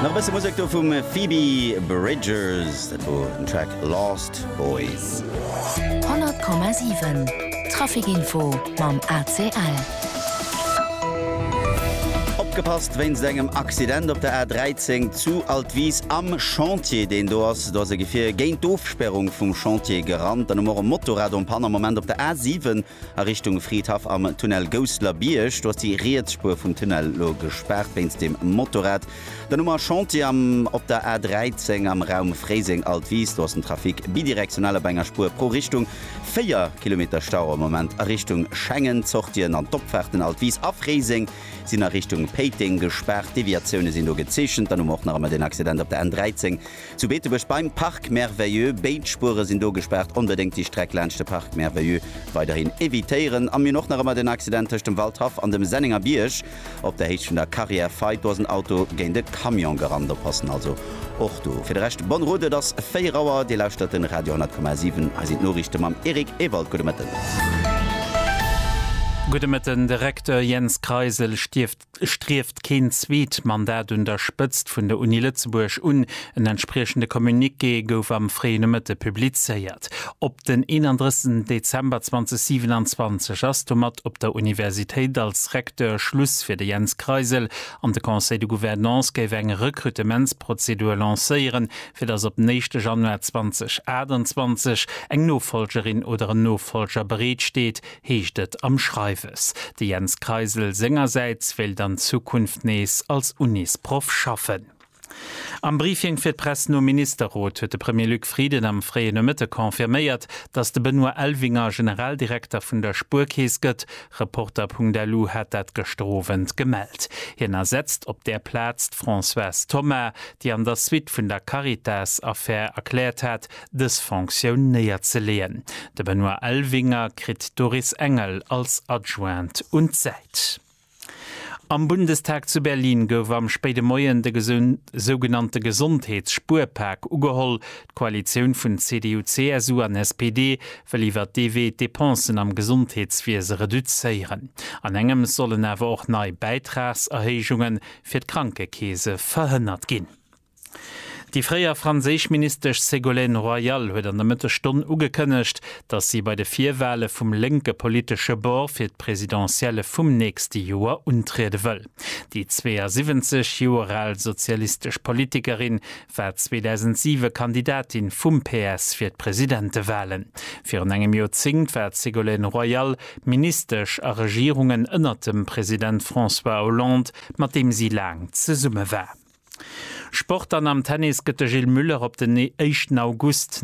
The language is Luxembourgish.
Nach e bësse Musek do vum Phoebe Bridgers, dat wor den Track Lost Boys. 100,7 Traficinfo mam ACL. Opgepasst wéinst engem Accident op der A13 zu Altwis am Chantier deen do ass. Do ass e Gefier géint d'Ofspärung vum Chantier gerannt. Dann hu mer och e Motorrad en Panne am Moment op der A7 A Richtung Fridhaff am Tunnel Gousseler Bierg, do ass déi riets Spuer vum Tunnel elo gespaart wéinst dem Motorrad. Dann hu mer Chantier am op der A 13 am Raum Fréiseng-Altwis, do ass den Trafic bidirektional op enger Spuer pro Richtung. Véier Kilometer Stau am Moment a Richtung Schengen. D'Sortien an d'Opfaarten Altwis a Fréiseng sinn a Richtung Péiteng gespaart. Deviatioune sinn do gezeechent. Dann hu mer och nach ëmmer den Accident op der N 13 Zu Beetebuerg beim Parc Merveilleux, béid Spuere sinn do gespaart. Onbedéngt déi Streck laanscht de Parc Merveilleux weiderhin evitéieren. A mir hunn och nach ëmmer den Accident tëscht dem Waldhaff an dem Sennenger Bierg op der Héicht vun der Carrière Fay. Do ass en Auto géint e Camion gerannt. Oppassen also och do. Fir de Rescht bonne route. Et ass 4 Auer. Dir lauschtert den Radio 10,7. Hei sinn d'Noriichte mam Eric Ewald. Gudde Mëtten. Gudde Mëtten. De Recteur Jens Kreisel stierft. Strieft keen zweet Mandat un der Spëtzt vun der Uni Lëtzebuerg un. En entspriechende Communiqué gouf am fréie Nomëtte publizéiert. Op den 31 Dezember 2027 ass domat op der Universitéit als Recteur Schluss fir de Jens Kreisel an de Conseil de Gouvernance géif eng Rekrutementsprozedur lancéieren, fir datt op den éischte Januar 2028 eng Nofolgerin oder en Nofolger bereet steet, heescht et am Schreiwes. De Jens Kreisel sengersäits wéilt an Zukunft nees als Unisproff schaffen. Am Briefing fir d'Press nom Ministerrot huet de Premier Luc Frieden am fréie Nomëtte confirméiert, datt de Benoît Elvinger Generaldirekter vun der Spuerkeess gëtt. Reporter.lu hat dat gëschter Owend gemellt. Hien ersetzt op där Plaz d'Françoise Thoma, déi an der Suite vun der Caritas-Affär erkläert hat, dës Fonctioun néierzeleeën. De Benoît Elvinger kritt d'Doris Engel als Adjoint un d'Säit. Am Bundestag zu Berlin gouf am spéide Moien de sougenannte Gesondheets-Spuerpak ugeholl. D'Koalitioun vun CDU, CSU an SPD wëll iwwer dee Wee d'Depensen am Gesondheetswiese reduzéieren. An engems sollen awer och nei Bäitragserhéijunge fir d'Krankekeese verhënnert ginn. Déi fréier franséisch Ministesch Ségolène Royal huet an der Mëttesstonn ugekënnegt, datt si bei de Virwale vum lénke politesche Bord fir d'Presidentielle vum nächste Joer untriede wëll. Déi 72 Joer al sozialistesch Politikerin war 2007 Kandidatin vum PS fir d'Presidentewalen. Virun engem Joerzéngt war d'Ségolène Royal Ministesch a Regierungen ënnert dem President François Hollande, mat deem si laang zesumme war. Sport an am Tennis gëtt de Gilles Muller op den éischten August